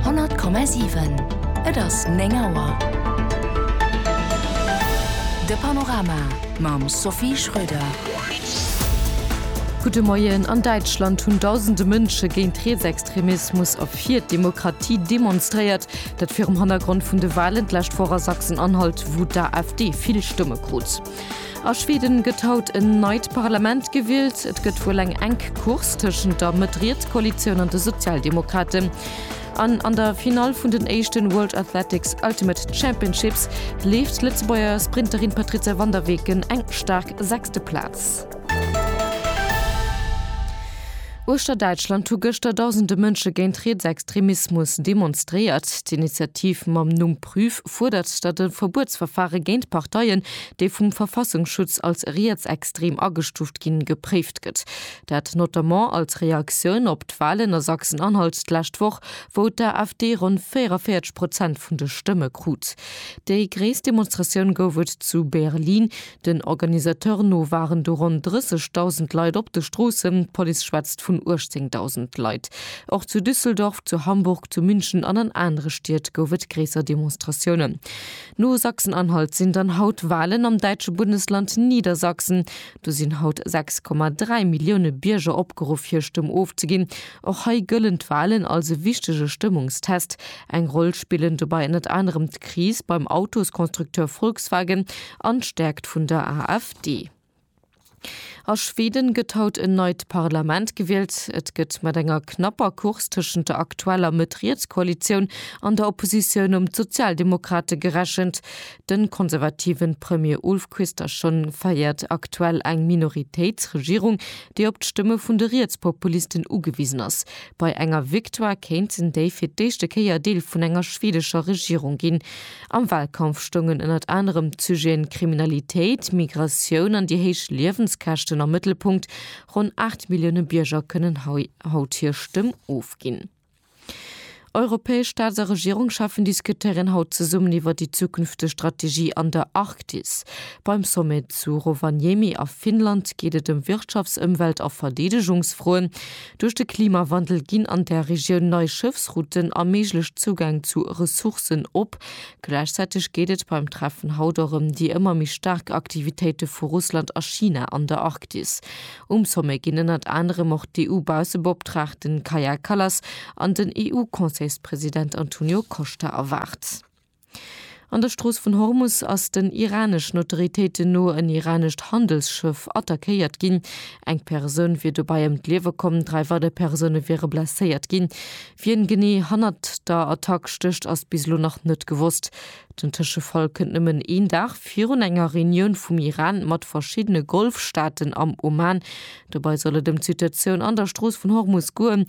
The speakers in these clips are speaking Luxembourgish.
100,7 Et ass 9 Auer. De Panorama mam Sophie Schröder. Gudde Moien. An Däitschland hunn dausende Mënsche géint Rietsextremismus a fir d'Demokratie demonstréiert. Dat virum Hannergrond vun de Walen d'lescht Woch a Sachsen-Anhalt, wou d'AfD vill Stëmme krut. A Schweden gëtt haut en neit Parlament gewielt. Et gëtt wuel eng enk Course tëschent der Mëtt-Riets Koalitioun an de Sozialdemokraten. An an der Finall vun den éischten World Athletics Ultimate Championships leeft d'Lëtzebuerger Sprinterin Patrizia van der Weken eng staark sechste Plaz. Uechter Däitschland hu gëschter dausende Mënsche géint Rietsextremismus demonstréiert. D'Initiativ mam Numm Prüf fuerdert, datt e Verbuetsverfare géint Parteien, déi vum Verfassungsschutz als rietsextrem agestuuft ginn, gepréift gëtt. Dat notamment als Reaktioun op d'Walen a Sachsen-Anhalt d'lescht Woch, wou d'AfD ronn 44 Prozent vun de Stëmme krut. Déi gréisst Demonstratioun gouf et zu Berlin. Den Organisateur no waren do ronn 30.000 Leit op de Stroossen, d'Police schwätzt vun 18.000 Leit. Och zu Düsseldorf, zu Hamburg, zu München an an anere Stied gouf et gréisser Demonstratiounen. No Sachsen-Anhalt sinn dann haut Walen am däitsche Bundesland Niedersachsen. Do sinn haut 6,3 Millioune Bierger opgeruff hir Stëmm ofzeginn. Och hei gëllen d'Walen als e wichtege Stëmmungstest. Eng Roll spillen dobäi ënnert anerem d'Kris beim Autosconstructeur Volkswagen An d'Stärkt vun der AfD. A Schweden gëtt haut en neit Parlament gewielt. Et gëtt mat enger knapper Course tëschent der aktueller Mëtt-Riets-Koalitioun an der Oppositioun ëm d'Sozialdemokrate gerechent. De konservative Premier Ulf Kristersson féiert aktuell eng Minoritéitsregierung, déi op d'Stëmme vun de Rietspopulisten ugewisen ass. Bei enger Victoire kéinten déi fir d'éischte Kéier Deel vun enger schwedescher Regierung ginn. Am Wahlkampf stoungen ënnert anerem d'Sujeten Kriminalitéit, Migratioun an déi héich Liewenskäschten am Mëttelpunkt. Ronn 8 Millioune Bierger kënnen haut hir Stëmm ofginn. Europäesch Staats a Regierungscheffen diskutéieren haut zesummen iwwer déi zukünfteg Strategie an der Arktis. Beim Sommet zu Rovaniemi a Finnland geet et ëm Wirtschafts-, Ëmwelt a Verdeedegungsfroen. Duerch de Klimawandel ginn an der Regioun nei Schëffsrouten a méiglech Zougäng zu Ressourcen op. Gläichzäiteg geet et beim Treffen haut och ëm déi ëmmer méi staark Aktivitéite vu Russland a China an der Arktis. Um Sommet ginn ënnert anerem och d'EU-Bausseboptraagten Kaja Kallas an den EU-Conseilspresident Antonio Costa erwaart. An der Strooss vun Hormus ass den iraneschen Autoritéiten no en iranescht Handelsschëff attackéiert ginn. Eng Persoun wier dobäi ëm d'Liewe komm, dräi weider Persoune wiere blesséiert ginn. Wien genee hannert der Attack stécht, ass bis elo nach net gewosst. Den Tëschefall kënnt nëmmen een Dag virun enger Reunioun vum Iran mat verschiddene Golfstaaten am Oman. Dobäi soll et ëm d'Situatioun an der Strooss vun Hormus goen.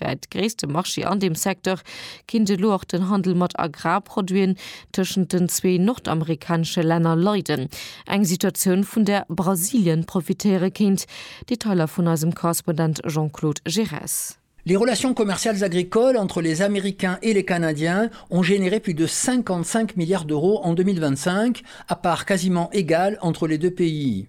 Wär et gréisste Marché an deem Secteur, kinnt elo och den Handel mat Agrarproduiten tëschent den zwee nordamerikanesche Länner leiden, eng Situatioun vun där Brasilien profitéiere kéint. Detailer vun eisem Korrespondent Jean-Claude Giresse. Les relations commerciales agricoles entre les Américains et les Canadiens ont généré plus de 55 milliards d'euros en 2025, à parts quasiment égales entre les deux pays.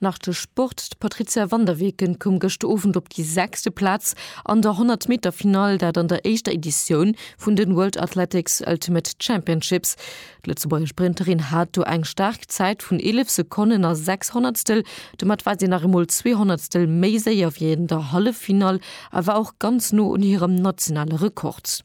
Nach de Sport, D'Patrizia van der Weken koum gëschter Owend op déi sechste Plaz an der 100 Meter Finall, dat an der éischter Editioun vun den World Athletics Ultimate Championships. D'Lëtzebuerger Sprinterin hat do eng staark Zäit vun 11 Sekonnen a 6 Honnertstel. Domat war si nach eemol zwee Honnertstel méi séier wéi an der Halleffinall a war och ganz no un hirem nationale Rekord.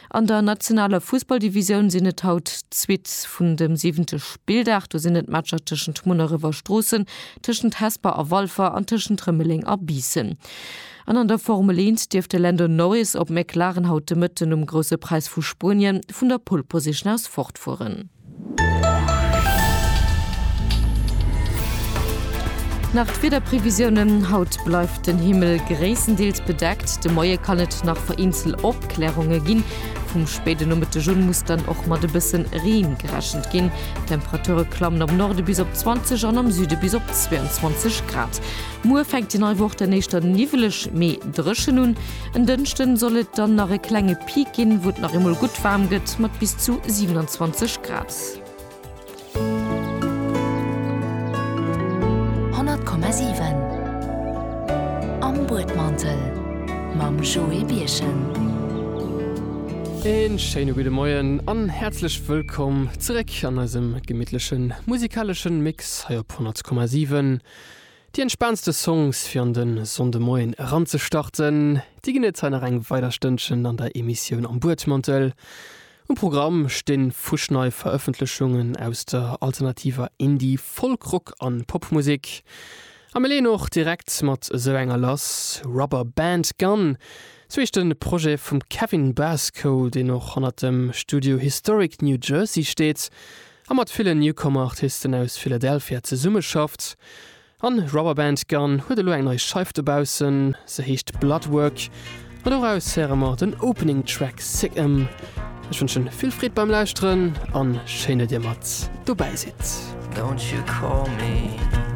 An der nationaler Fussballdivisioun sinn et haut d'Suite vun dem siwente Spilldag. Do sinn et d'Matcher tëschent Munneref a Stroossen, tëschent Hesper a Walfer an tëschent Rëmeleng a Biissen. An an der Formel 1 dierf de Lando Norris op McLaren haut de Mëtten um Grousse Präis vu Spuenien vun der Pole Position aus fortfueren. Nach d'Wiederprevisiounen, Haut bleift den Himmel gréisstendeels bedeckt, de Moie kann et nach vereenzelt Opklärunge ginn. Vum spéide Nomëtteg un muss dann och mat e bësse Reen gerechent ginn. D'Temperature klammen am Norde bis op 20 an am Süde bis op 22 Grad. Muer fänkt déi nei Woch dann éischter niwweleg, mee dréchen un. En Dënschden soll et dann nach e klenge Peak ginn, wou et nach eemol gutt waarm gëtt mat bis zu 27 Grad. Een schéine gudde Moien an häerzlech wëllkomm zeréck an eisem gemittlechen musikaleschen Mix hei op 100,7. Déi entspaantste Songs fir an de Sonndemoien eranzestarten, déi ginn et hei nach eng weider Stënnchen an der Emissioun Am Buedmantel. Um Programm sti fuschnei Verëffentlechungen aus der alternativer Indie-, Folk-, Rock a Popmusek. A mir leeën och direkt mat esou enger lass, Rubber Band Gun, sou heescht de Projet vum Kevin Basco, deen och hannert dem Studio Historic New Jersey steet. a mat villen Newcomer Artisten aus Philadelphia zesummeschafft. An Rubberband Gun huet elo eng nei Scheif dobaussen, se heescht Bloodwork an doraus héiere mer den Opening Track Sick 'Em. Ech wënschen vill Freed beim Lauschteren an schéin dat dir mat dobäi sidd. Don't you call me.